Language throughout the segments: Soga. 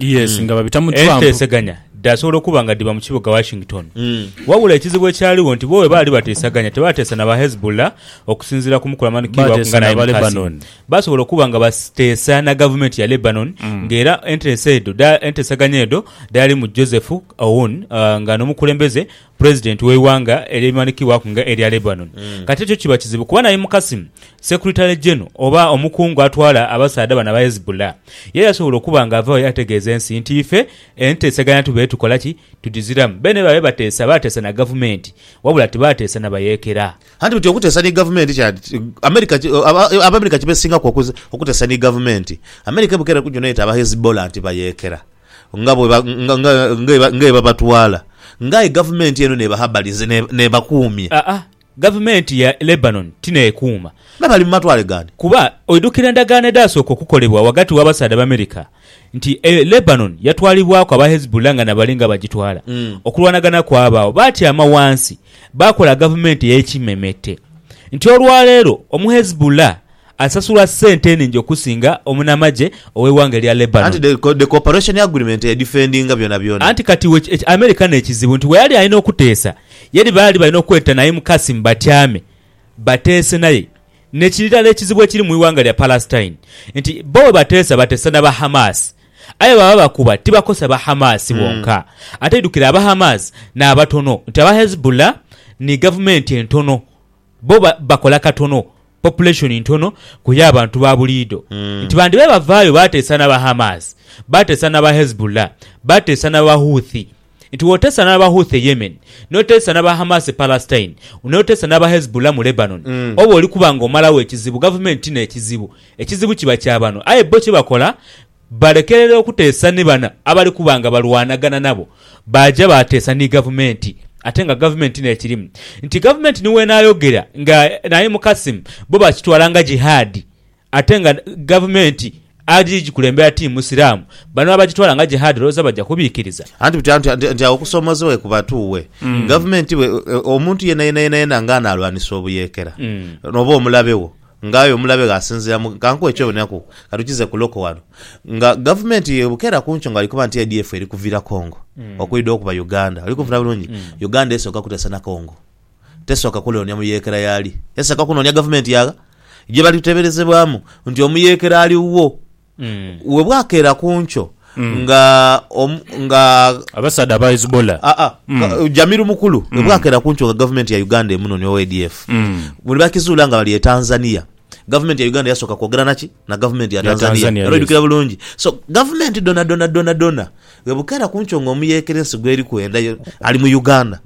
Yes, nga babita mu Trump. Enteeseganya dhaasobola okuba nga dhiba mu kibuga Washington. Wabula ekizibu ekyaligho nti bo bwe baali bateesaganya tebaateesa na ba Hezbollah okusinziira ku mukulu amanhikirwaku Baateesa nga na naye ba mukazi. Lebanon. Baasobola okuba nga bateesa na gavumenti ya Lebanon ng'era enteesa edho dha- enteesaganya edho dhaalimu Joseph Aoun ah, nga n'omukulembeze Pulezidenti w'eighanga elimanhikibwaku nga elya Lebanon. Kati ekyo kiba kizibu kuba naye mu Qassem, Secretary General oba omukungu atwala abasaadha bano aba Hezbollah, ye yasobola okuba nga avaayo yategeeza ensi nti ife enteeseganya tube tukola ki? Tudhiziramu. Beene babe bateesa, baateesa na gavumenti wabula tibaateesa na bayeekera. Anti buti okuteesa ni gavumenti kyadi ki? America, Abaamerika kibesingaku okuteesa ni gavumenti. America ebukeera kujuna ete aba Hezbollah nti bayeekera. nga bwe ba, nga, nga, nga eba, nga ebabatwala, nga aye gavumenti eno n'ebaha balinzi ne, n'ebakuumya. Aa, gavumenti ya Lebanon ti n'ekuuma. Me bali mu matwale gandi. Kuba, oidhukira endagaano edhaasooka okukolebwa ghagati w'abasaadha Abamerika, nti e, Lebanon yatwalibwaku aba Hezbollah nga nabali nga bagitwala. Mm. Okulwanagana kwabaagho. Baatyama ghansi, baakola gavumenti ey'ekimemete. Nti olwaleero, Omuhezbollah. Asasula sente eningi okusinga omunamagye ow'eighanga elya Lebanon. Anti the cooperation agreement yedifendinga byonabyona. Anti kati iwe America n'ekizibu nti weyali alina okuteesa yali baali balina okweta Naim Qasim batyame bateese naye. N'ekirala ekizibu ekiri mu ighanga lya Palestine nti bo bwebateesa bateesa n'aba Hamas aye bwebaba bakuba tibakosa ba Hamas bonka ate idhukire aba Hamas n'abatono nti aba Hezbollah ni gavumenti entono bo bakola katono, population ntono ku y'abantu ba buliidho, nti bandhiba bavaayo baateesa n'aba Hamas, baateesa n'aba Hezbollah, baateesa n'aba Houthi. Nti w'oteesa n'aba Houthi e Yemen, n'oteesa n'aba Hamas e Palestine, n'oteesa n'aba Hezbollah mu Lebanon, oba oli kuba ng'omalagho ekizibu, gavumenti ti n'ekizibu, ekizibu kiba kya bano. Aye bo kye bakola balekerera okuteesa ni bano abali kuba nga balwanagana nabo baaja baateesa ni Gavumenti ate nga Gavumenti n'ekirimu nti Gavumenti ni w'enaayogera nga naye Mukasim bo bakitwala nga Jihad ate nga Gavumenti ali gikulembera ti Musiraamu bano abagitwala nga Jihad olowooza baja kubiikiriza? Anti buti anti anti anti agho kusoomoozebwa ye kubatuuwe. Gavumenti bwe, omuntu yena yena yena yena nga anaalwanisa obuyeekera oba omulabe wo Nga aye omulabe ghe asinziira mu. Ka nkuwe eky'oboneraku, ka tukize ku Loko ghano. Nga gavumenti ye Bukeera ku nkyo nga ali kuba nti ADF eri kuvira Congo okwidha okuba Uganda. Oli kunfuna bulungi? Uganda esooka kuteesa na Congo. Tesooka kunoonia muyeekera y'ali. Esooka kunoonia gavumenti ya ghe. Gye bali kuteeberezebwamu nti omuyeekera ali wo. Bwe bwakeera ku nkyo nga, nga. Abasaadha aba Hezbollah. Aa, nga Jamil Mukulu, bwe bwakeera ku nkyo nga Gavumenti ya Uganda emunonhi owa ADF, bwe baakizuula nga bali e Tanzania, Gavumenti ya Uganda yasooka kwogera na ki? Na Gavumenti ya Tanzania. Era oidhukira bulungi. So, Gavumenti dhonadhona, dhonadhona. Bwebukera kunkyo nga omuyekera ensi gweri kwenda yo ali mu Uganda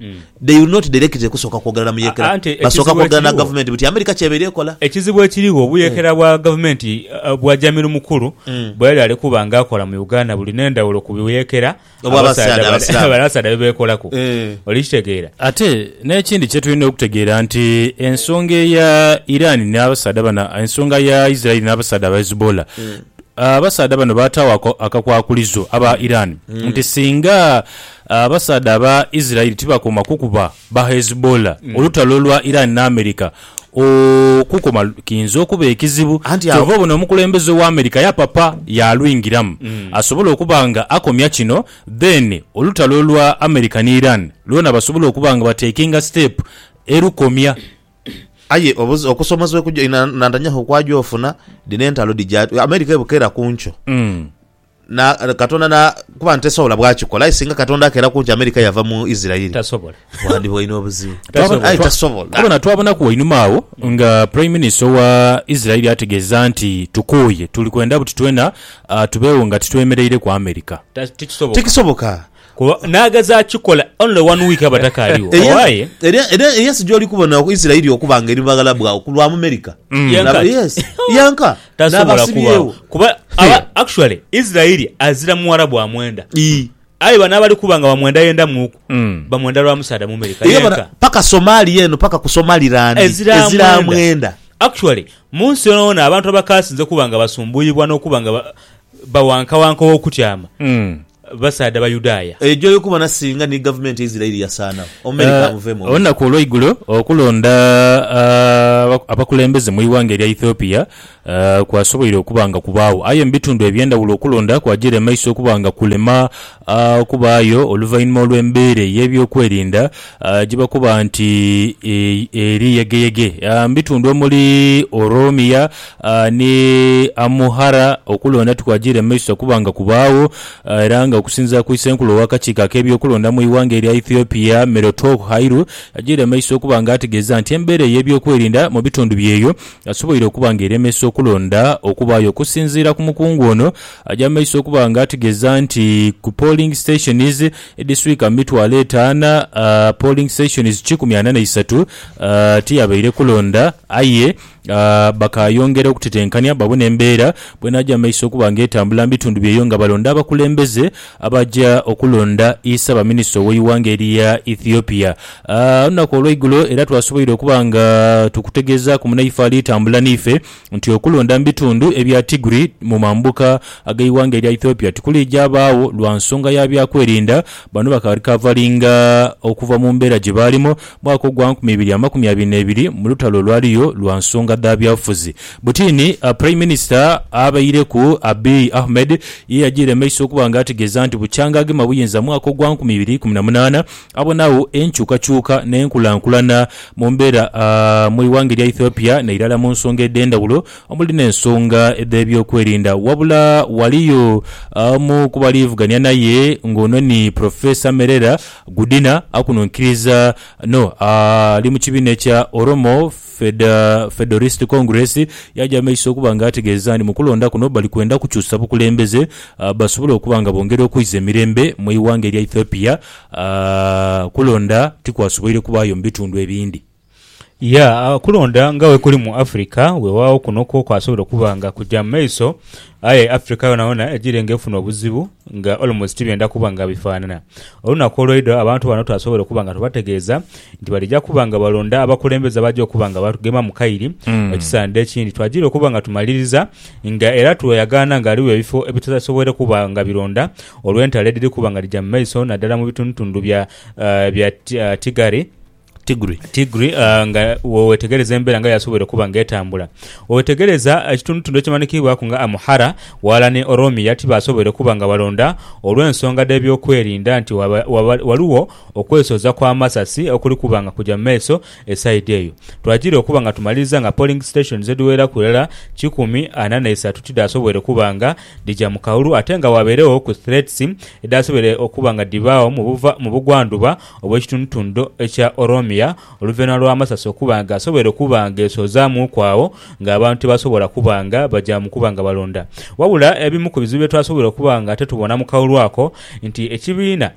they will not directly kusooka kwogera na muyekera basooka kwogera na gavumenti buti America kyeba eri ekola. Ekizibu ekirigho obuyekera bwa gavumenti bwa Jamiru Mukulu bweyali ali kuba nga akola mu Uganda buli nendhawulo ku buyekera abasaadha bebekolaku oli kitegeera. Ate nekindi kyetulina okutegeera nti ensonga eya Iran nabasaadha bano ensonga ya Israel nabasaadha ba Hezbollah Abasaadha bano baataagho akakwakulizo aba Iran nti singa abasaadha aba Israel tibakoma kukuba ba Hezbollah, olutalo lwa Iran ni America okukoma kiinza okuba ekizibu. Kyova obona omukulembeze owa America yapapa yaalwingiramu asobole okuba nga akomya kino, then olutalo lwa America ni Iran lwona basobole okuba nga batekinga step erukomya. Aye obuzi- okusomozebwa ekuja ina- inantanyaku okwaja ofuna, dhino entalo dhija, America ebukera ku nkyo. Mm. Na, Katonda na, kuba nti tesobola bwakikola, aye singa Katonda akera ku nkyo America yava mu Isirairi, Tasobola. bwandhiba olina obuzibu. Tasobola. Aye tasobola. Twabona twabonaku wainuma agho nga prime minister owa Israel ategeeza nti tukooye tuli kwenda buti twena ah, tubeewo nga titwemereireku America. Ta- Tikisoboka. Tikisoboka. Kuba naageza akikola only one week abo atakaaligho. Eri ensi- Owaye. eri- eri- eri ensi gy'oli kubona oku Isiraeli okuba nga eri mu baghala bwagho ku lwa Mumerika. Mm. Yenka. Laba- yes, yenka. Tasobola kubaawo. N'abasibyewo. Kuba Hey. aba- actually Isiraeli azira muwala bwa mwenda. Ii. Aye bano abali kuba nga bamwendayendamuuku Mm. bamwenda lwa musaadha Mumerika. Era bona, Yenka. paka Somalia eno paka ku Somaliland Ezira ezira mwenda. mwenda. Actually mu nsi yonaona abantu abakaasinze kuba nga basumbuuyibwa n'okuba nga ba- bawankawanka ow'okutyama Mm. basaadha Bayudaaya. Eyo gyoli kubona singa ni gavumenti ya Isirairi yasaanagho, Omeri kamuvemu obuzibu. Olunaku olweigulo okulonda abakulembeze mwighanga erya Ethiopia kwasoboire okuba nga kubaagho aye mubitundhu ebyendhawulo okulonda kwajira emaiso okuba nga kulema okubaayo oluvainhuma olwembeera eyebyokwerinda gyebakoba nti eri yegeyege mubitundhu omuli Oromia, A Ni Amuhara okulonda tikwajiire mu maiso kuba nga kubaagho era nga okusinziira ku Isenkulu ow'akakiiko ak'ebyokulonda mu ighanga erya Ethiopia, Merotough Hairu ajiire maiso okuba nga ategeeza nti embeera ey'ebyokwerinda mu bitundu bye eyo asoboire okuba nga eremesa okulonda okubaayo okusinziira ku mukungu ono aja maiso okuba nga ategeeza nti ku polling stations edhiswika mu mitwalo etaana polling stations kikumi ana na isatu tiyabaire kulonda aye bakaayongera okutetenkania babone embeera bw'enaaja mu maiso okuba nga etambula mu bitundu byeyo nga balonda abakulembeze abaja okulonda Issabaminista ow'eighanga eryo eya Ethiopia. Olunaku olweigulo era twasoboire okuba nga tukutegeezaaku munaife ali tambula n'ife nti okulonda mu bitundu ebya Tigri mu mambuka ag'eighanga erya Ethiopia tikuliija baagho lwa nsonga ya byakwerinda bano bakali kavalinga okuva mu mbeera gye baalimu mwaka ogwa nkumi ibiri amakumi abiri n'ebiri mu lutalo olwaliyo lwa nsonga dha byabufuzi. Butini, Praime Minisita abaireku Abiy Ahmed ye yajiire maiso okuba nga ategeeza nti bukyanga agema buyinza mu mwaka ogwa nkumi ibiri ikumi na munaana, abonagho enkyukakyuka n'enkulankulana mu mbeera mu ighanga erya Ethiopia n'eirala mu nsonga edh'endhawulo omuli n'ensonga dh'ebyokwerinda. Wabula ghaliyo omu ku baliivugania naye ng'ono ni Professor Merera Gudina akuno nkiriza no ali mu kibiina ekya Oromo Federalist Congress yaja maiso okuba nga ategeeza nti mu kulonda kuno bali kwenda kukyusa bukulembeze basobole okuba nga bongera okwiza emirembe mu ighanga erya Ethiopia. Kulonda tikwasoboire kubaayo mu bitundu ebindi. Ya, okulonda nga bwekuli mu Africa, weewaawo kuno kwo kwasobola okuba nga kuja mu maiso, aye Africa yonayona ejiire nga efuna obuzibu nga almost tibyenda kuba nga bifaanana. Olunaku olweidho abantu bano twasobola okuba nga tubategeeza nti balija kuba nga balonda abakulembeze abaja okuba nga batugema mu kairi ekisaandha ekindi. Twajiire okuba nga tumaliriza nga era tweyagaana nga ghaligho ebifo ebitasoboire kuba nga bironda olw'entalo edhiri kuba nga dhija mu maiso naddala mu bitundutundu bya Tigray. Tigri. Tigri uh, nga wewetegereza embera nga yasobola okuba nga etambula wewetegereza ekitundutundu ekimanikibwaku nga Amuhara wala ni Oromia tibasobola okuba nga balonda olw'ensonga dh'ebyokwerinda nti waba, waba, waliwo okwesoza kw'amasasi okuli kuba nga kuja mumaiso esaidi eyo twajira okuba nga tumaliriza nga polling stations edhiweraku irala kikumi ana neisatu tidhasobola okuba nga dhija mu kaulu ate nga waberewo ku threats edhasobola okuba nga dhibaawo mu bugwanduba obw'ekitundhutundu ekya Oromia oluvainhuma lwa masasi okuba nga asoboire okuba nga esozamuuku agho nga abantu tibasobola kuba nga baja mu kuba nga balonda. Wabula ebimu ku bizibu bye twasoboire okuba nga titubona mu kaulu ako nti ekibiina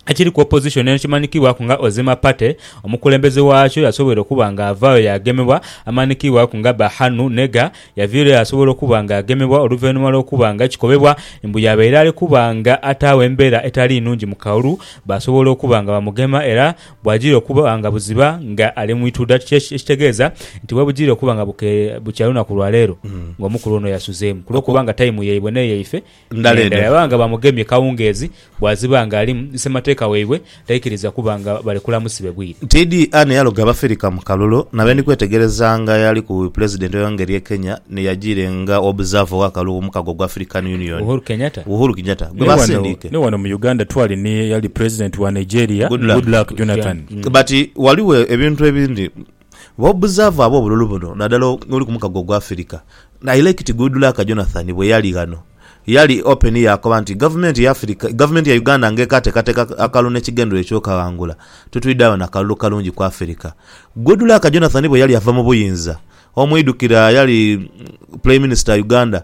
ekiri ku opozishoni eno ekimanhikibwaku nga Ozima Party, omukulembeze waakyo yasoboire okuba nga avaayo yaagemebwa amanhikibwaku nga Berhanu Nega, Yaviirayo asobola okuba nga agemebwa oluvainhuma lw'okuba nga kikobebwa mbu yaabaire ali kuba nga ataagho embeera etali nnhungi mu Kaulu, baasobola okuba nga bamugema era bwajira okuba nga buziba nga ali mu ituda kiki ekitegeeza nti webujira okuba nga bukya lunaku lwaleero nga omukulu ono yasuzeemu kulw'okuba nga tayimu yaibwe n'eyaife ndala eno. Naye nga bamugemye kawungeezi bwaziba nga alimu ni Ssemateeka waibwe taikiriza kuba nga balekula musibe bwire. Tiidhi ani yaloga Abafirika mu kalulu na bendi kwetegereza nga eyali ku Bwipulezidenti oyo ngeri ye Kenya ni yajiire nga Observer owa kalulu ku mukago gwa African Union, Uhuru Kenyatta. Uhuru Kenyatta, gwe Ni wano, basindiike. ni wano mu Uganda twali ni eyali Pulezidenti wa Nigeria, Goodluck. Goodluck Jonathan. But waliwo ebintu ebindi Bw'obuzaavu ab'obululu buno, nadala oli ku mukago ogwa Afirika, I like it good luck Jonathan bwe yali ghano, yali open yaakoba nti Gavumenti y'Afirika, Gavumenti ya Uganda ng'ekateekateeka akalulu n'ekigendererwa eky'okaghangula, tutwidhe agho na kalulu kalungi ku Afirika. Good luck Jonathan bwe yali ava mu buyinza, omwidukira yali Prime Minister Uganda,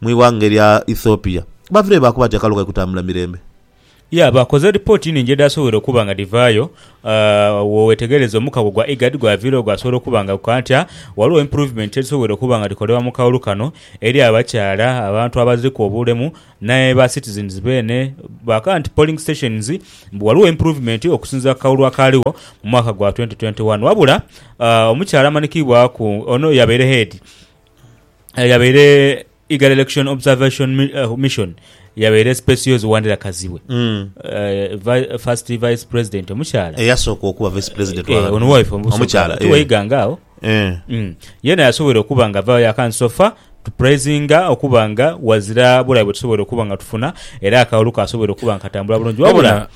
Mu ighanga erya Ethiopia, bavireyo baakuba nti akalu kali kutambula mirembe. Ya, baakoze lipooti nnhingi edhaasobwoire okuba nga dhivaayo. Bwowetegereza omukago gwa IGAD gwaviirewo gwasobola okuba nga gukola ntya? Ghaligho improvement edhisobwoire okuba nga dhikolebwa mu kaulu kano eri abakyala, abantu abaziriku obulemu ne ba citizens beene. Baakagha nti polling stations mbu ghaligho improvement okusinziira ku kaulu akaaligho mu mwaka gwa twenty twenty one. Wabula omukyala amanhikiibwaku ono yabaire head, Eyo yabaire Eagle Election Observation Mi- eh, Mission yabaire speciosi Wandera Kazibwe eh, vi- first vice president omukyala eyasooka okuba vice president Eh, ono waife omukyala omukyala eh. tiwaiganga awo Eh. Mm. yena yasobola okuba nga ava yakansofa tupraisinga okuba nga wazira bulabe bwetusobola okuba nga tufuna era akawolu kasobola okuba nga katambula bulungi wabula Wabula-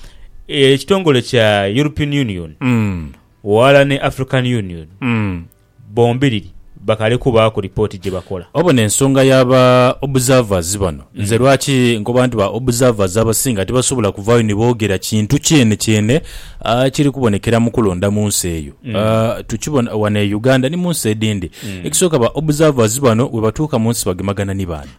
eh, ekitongole kya european union Mm. wala ne african union Mm. bombiriri bakale kubaaku ripooti gye bakola. Obona ensonga ya ba observers bano. Nze lwaki nkoba nti ba observers abasinga tibasobola kuvaayo ni boogera kintu kyene kyene kiri kubonekera mu kulonda mu nsi eyo. Tukibona wano e Uganda ni mu nsi edindi. Ekisooka ba observers bano bwebatuuka mu nsi bagemagana ni baani?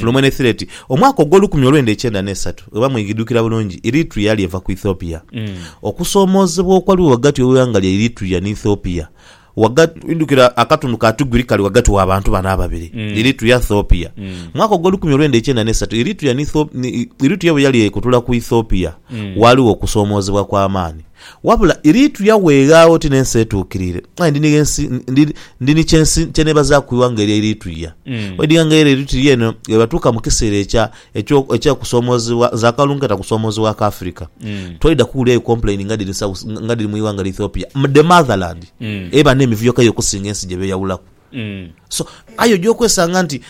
Fulumenethireti, omwaka ogw'olukumi olwenda ekyenda n'esatu, bweba mwidhukira bulungi, Eritrea yali eva ku Ethiopia. Okusoomoozebwa okwaliwo ghagati w'eighanga lya Eritrea ni Ethiopia, ghagati. Mwidhukira akatundu ka Tigiri kali ghagati wa bantu bano ababiri, Eritrea, Ethiopia. Mwaka ogw'olukumi olwenda ekyenda n'esatu, Eritrea ni Ethiopia, Eritrea bwe yali ekutula ku Ethiopia, ghaligho okusoomoozebwa kw'amaani. Wabula Iritu yaweegha oti n'ensi etuukirire, aye ndi ni gh'ensi, ndi, ndi ni ky'ensi kye neebazaaku ighanga erya Iritu ye. Bwedinga nga era Iritu ye eno bwebatuuka mu kiseera ekya, ekyo, eky'okusoomoozebwa, nze akalulu nkeeta kusoomoozebwa aka Afirika, twaidha kuwulirayo complain nga dhiri south, nga dhiri mu ighanga lya Ethiopia, the motherland, eba n'emivuyo kaire okusinga ensi gye beeyawulaku. So, aye oja okwesanga nti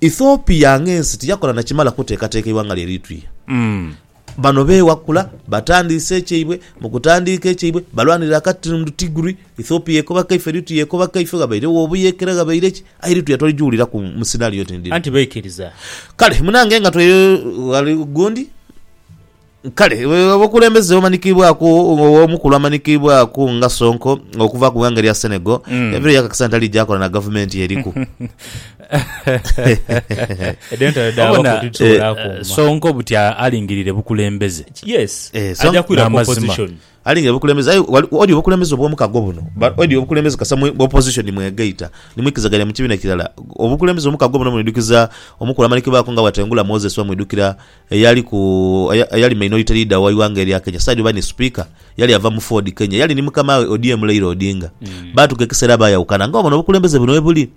Ethiopia ng'ensi tiyakola na kimala kuteekateeka ighanga lya Iritu ye. Bano beewa kula, batandiise ekyaibwe, mu kutandiika ekyaibwe balwanirira akatini mu Dutigri, Ethiopia ekoba kaife, Eritrea ekoba kaife, ghabairegho obuyeekera, ghabaire ki, aye Eritrea twaligiwuliraku mu scenario oti ndhino. Anti baikiriza. Kale munange nga twe ghali gundi, kale abakulembeze bamanikibwaku omukulu amanikibwaku nga Sonko okuva ku ghanga erya Senegal, ebiro yakakasa nti aligya akola na gavumenti eriku. Obona eh, Sonko buti alingirire bukulembeze eh, n'amazima alingirire bukulembeze aye odi obukulembeze obw'omukago buno odi obukulembeze kasa mu opposition mwegaita nimwikizagania mu kibiina kirala obukulembeze omukago buno mwidukiza omukulu amala kibaako nga bwatengula Moses bamwidukira eyali ku, eyali Minority Leader wa ighanga erya Kenya, saidi oba ni Sipiika, yali ava mu Ford, Kenya. Yali ni mukama we ODM Leila Odinga. Baatuuka ekisera baayawukana. Nga obona obukulembeze buno bwebuli.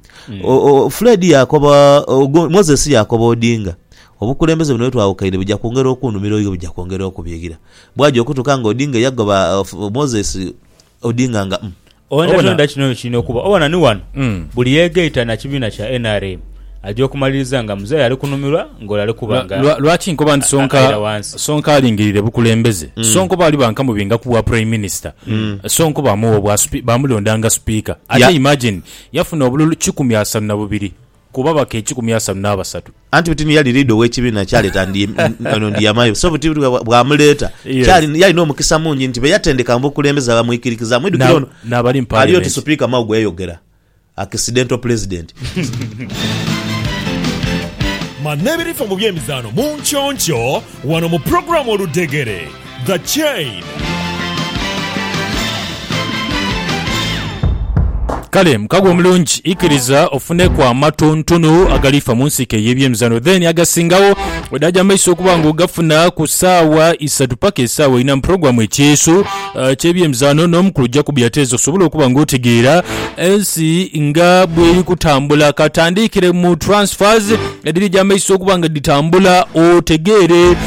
O, o, Fred yaakoba, ogu, Moses yaakoba Odinga, Obukulembeze buno bwetwawukaine buja kwongera okunumira oighe, buja kwongera okubigha. Bwaaja okutuuka nga Odinga yagoba, o, Moses, Odinga nga um Oghenda Obona? toghenda kino kiri n'okuba. Obona ni wano Mm. buli yeegaita na kibiina kya nrm aja okumaliriza nga Muzeeyi ali kunumirwa ng'ole ali kuba Lwa- nga lwa- Lwaki nkoba nti Sonko aira wansi. Sonko alingirire bukulembeze? Sonko baali bankamubinga ku bwa Prime Minister. Sonko baamuwa obwa spi- baamulonda nga Sipiika. Ate Ya- imagine, yafuna obululu kikumi asanu na bubiri. Ku babaka ekikumi asanu n'abasatu. Anti buti ni yali liida ow'ekibiina kyaleeta Ndiyamayo, so buti bwamuleeta kyali yalina omukisa mungi nti be yatendeka mu bukulembeze bamwikirikizaamu. Mwidhukire ono ali oti Supiika Mao gwe yayogera akisidento Pulezidenti. Manebirifa mu by'emizaano mu nky'onkyo wano mu pulogulaamu Oludhegere. The Chain. Kale mukago omulungi ikiriza ofuneku amatontonu agalifa mu nsiike ey'ebyemizano then agasingawo wedaaja maiso okuba nga ogafuna ku saawa isatu paka esaawa ina mu program ekyeeso uh, ky'ebyemizano n'omukulu ojja kubiyateeza osobole okuba nga otegeera ensi nga bweri kutambula katandiikire mu transfers ediri egyamaiso okuba nga ditambula otegeere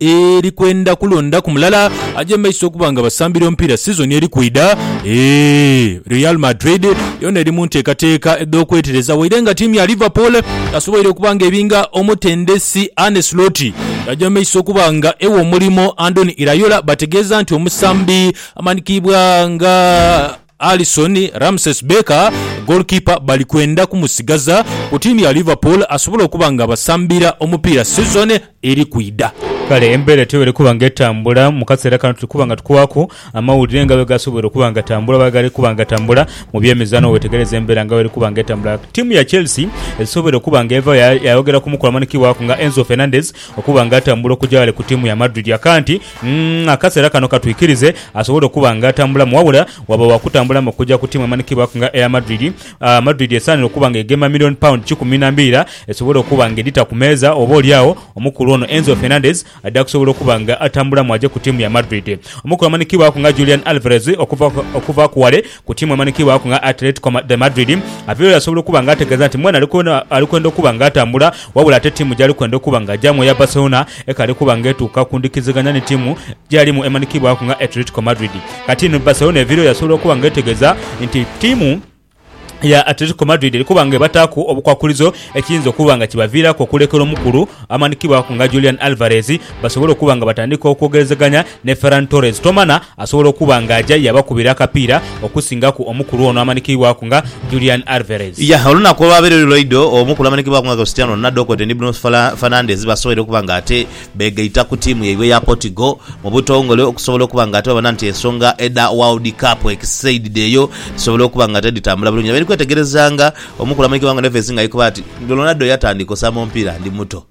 eri kwenda kulondaku mulala aje mu maiso okuba nga basambira omupiira sizoni eri kwidha. Real Madrid yoona eri mu nteekateeka edh'okwetereza waire nga ttiimu ya Liverpool yasoboire okuba nga ebinga omutendesi Arne Slot yaja mu maiso okuba nga ewa omulimo Andoni Iraola bategeeza nti omusambi amanhikiibwa nga Alisson, Ramses Becker, goalkeeper bali kwenda kumusigaza ku ttiimu ya Liverpool asobole okuba nga abasambira omupiira sizoni eri kwidha. Kale embeera etyo bw'eri kuba nga etambula mu kaseera kano, tuli kuba nga tukuwaaku amawulire nga bwe gasoboire okuba nga gatambula oba bwe gali kuba nga gatambula mu by'emizaano. Bw'owetegereza embeera nga bw'eri kuba nga etambula, ttiimu ya Chelsea esoboire okuba nga eva yayogera ku mukulu amanhikibwaku nga Enzo Fernandez okuba nga atambula okuja ghale ku ttiimu ya Madrid. Aka nti Umm akaseera kano katwikirize asobole okuba nga atambulamu wabula waba wa kutambulamu okugya ku ttiimu emanhikibwaku nga Air Madrid, Madrid esaanire okuba nga egema million pound kikumi na mbiira esobole okuba nga edhita ku meeza oba oli agho omukulu ono Enzo Fernandez adha kusobola okuba nga atambulamu agye ku ttiimu ya Madrid. Omukulu amanhikibwaku nga Julian Alvarez okuva okuva ku wale Ku tiimu emanhikiibwaku nga Atletico de Madrid, aviireyo yasobola okuba nga ategeeza nti mwene ali kwenda okuba nga atambula, wabula ate tiimu gy'ali kwenda okuba nga agyamu eya Barcelona ekaali kuba nga etuuka ku ndhikiziganya ni tiimu gy'alimu emanhikiibwaku nga Atletico Madrid. Katinho Barcelona eviireyo yasobola okuba nga etegeeza nti tiimu ya Atletico Madrid eli kuba nga ebataaku obukwakulizo ekiyinza okuba nga kibaviiraku okulekera omukulu amanhikiibwaku nga Julian Alvarez basobole okuba nga batandika okwogerezeganya ni Ferran Torres. Tomana. Asobola okuba nga aja yabakubira akapiira okusingaku omukulu ono amanhikiibwaku nga Julian Alvarez. Yah, olunaku olwabaire luli lwaidho, omukulu amanhikiibwaku nga Cristiano Ronaldo kwotaire ni Bruno Fernandes basoboire okuba nga ate beegaita ku tiimu yaibwe eya Portugal mu butongole okusobola okuba nga ate babona nti ensonga edha World Cup ekisaidhidheeyo dhisobola okuba nga ate dhitambula bulungi. Abairi kwetegerezanga omukulu amanhikiibwaku nga Neves nga ali kuba ati, Ronaldo yatandika osamba omupiira ndi muto.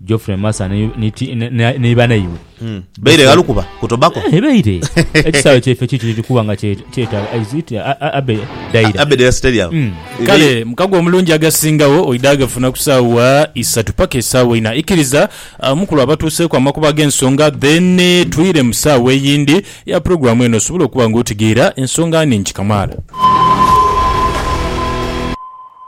Geoffrey Massa ni, ni, ti- ni, ni, ni banaibwe. Mm. Baire ghalu kuba ku tobacco. Eh, baire ekisaawe kyaife kiki kiri kuba nga kye- kyetaaga is it a- a- abe daira Abedera Stadium. Mm. Kale mukago omulungi agasingawo oidha gafuna ku saawa isatu paka esaawa ina ikiriza ah, mukulu abatuuseeku amakubo ag'ensonga then eh, twire mu saawa eyindi ya pulogulaamu eno osobole okuba nga otegeera ensonga nhingi kamaala.